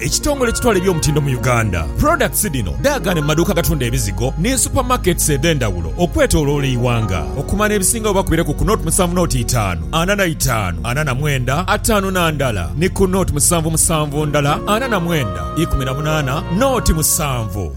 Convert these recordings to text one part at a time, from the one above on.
Ekitongole ekitwala eby'omutindo mu Uganda, products dhino dhaagaane mu maduuka agatunda ebizigo ni super markets edhendhawulo okwetoloola eighanga. Okumanya ebisingawo oba kubire ku ku nought musanvu nought itaanu ana na itaanu ana na mwenda ataanu na ndala ni ku nought musanvu musanvu ndala ana na mwenda ikumi na munaana nought musanvu.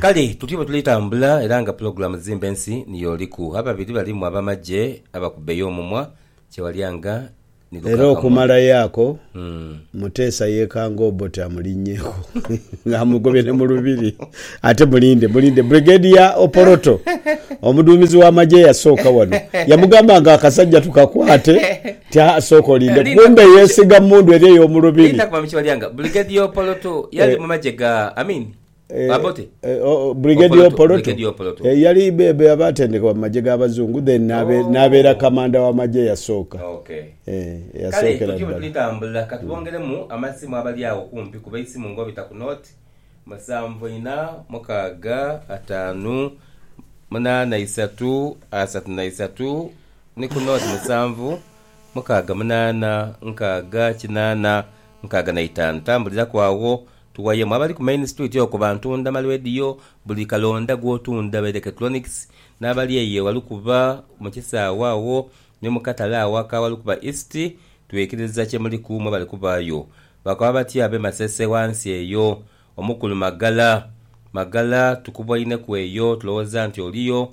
Kale tutyo bwe tuli tambula era nga pulogulamu zimba ensi niyo oliku. Ababiri balimu abamagye abakubeyo omumwa kyewalya nga ni lukakamwa. Era okumalayo ako, Muteesa yekanga Obote amulinnyeku nga amugobye ne mu lubiri. Ate mulinde, mulinde, Brigadier Opoloto, omuduumizi w'amagye eyasooka wano, yamugamba nga akasajja tukakwate nti haa sooka olinde, kumbe yeesiga mmundu eri ey'omu lubiri. Linda kuba mu kyewalya nga Brigadier Opoloto yali mu magye ga Amin. Brigadier Opoloto yali bebe abatendekebwa mu magye ga bazungu then nabeera oh. kamanda wa magye eyasooka. Eh, Kale tuti bwetulitambula katubongeremu amasimu abali awo kumpi kuba eisimu ngobita ku note musanvu ina mukaaga ataanu munaana isatu asatu na isatu ni ku note musanvu mukaaga munaana nkaaga kinaana nkaaga na itaanu tambuliraku awo Tuwayemu abali ku Main Street okwo bantunda ma leediyo, buli kalonda gw'otunda baire Ketronics, n'abali eyo ewalukuba mu kisaawe agho ni mu katale agho aka Walukuba East, twikiriza kye muliku mwe bali kubaayo. Bakaba batyo ab'e Masese ghansi eyo. Omukulu Magala, Magala, tukubwaineku eyo, tulowooza nti oliyo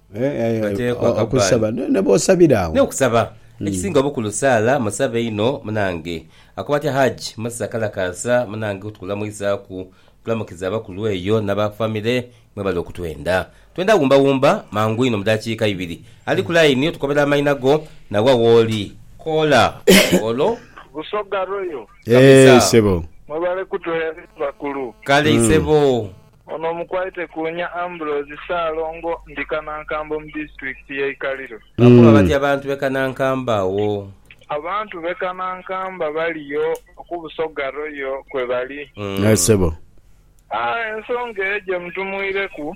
Bateekwa kabbaale. Naye okusaba. Ekisinga obukulu saala, musabe inho munange. Akoba atya Hajji Musa Kalakaasa, Munange kutukulamwizaku, tulamukiza abakulu eyo naba family, mwebale okutwenda. Twenda wumba wumba mangu inho mudakiika ibiri. Ali ku line otukobera amaina go na wa wooli. Koola olwo. Busoga Royal. Kabisa. Mwebale kutuheereza bakulu. Kale isebo. Ono omukwaite ku nya Ambrose Ssaalongo ndi Kanankambo mu disitulikiti y'e Ikaliro. Bakoba batya abantu b'e Kanankambo agho? Abantu b'e Kanankambo abaliyo ku Busoga Royal kwe bali. Aye ssebo. Ensonga eyo gye mutumwireku.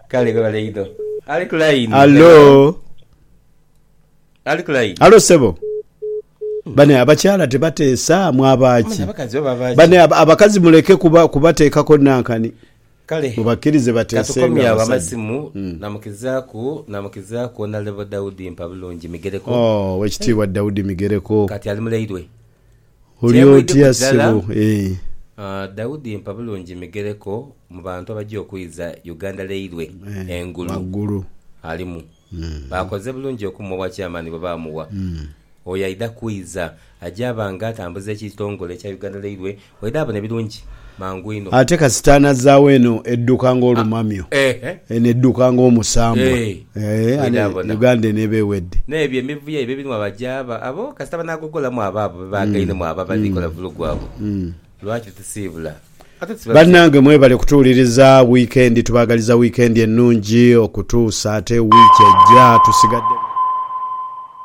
Kale webale inho. Ali ku line. Hallo. Ali ku line. Hallo sebo. Bane abakyala tebateesa mwaba ki? Manya abakazi oba baki. Bane ab- abakazi muleke kuba kubateekako nankani. Kale. Mubakkirize bateesenga Katukomye awo abasajja. amasimu namukizaaku namukizaaku Honourable Daudi Mpabulungi Migereko. Oh, Owekitiibwa Daudi Migereko. Kati ali mulairwe. Oli Temu idi otya kujala. sebo eeh. Aah Daudi mpa bulungi migereko mu bantu abagya okwiza Uganda leilwe Eeh engulu waggulu. alimu. Bakoze bulungi okumuwa owa chairman bwe baamuwa. Oyo aidha kwiza agya ba nga atambuza ekitongole ekya Uganda leilwe waidha abona ebirungi. mangu inho. Ate kasita anazaagho eno edduka ng'olumamyo, eno edduka ng'omusambwa, aah, Uganda eno eba ewedde. N'ebyo emivuyo ebyo ebirimu abaja abo, abo kasita banaagogolamu abo abo be baagainemu abo abadhi kola vulugu abo, lwaki tusiibula? Ate tusiibula tuti. Bannange mwebale kutuwuliriza, wiikendi tubaagaliza wiikendi ennungi okutuusa ate wiiki ejja, tusigadde.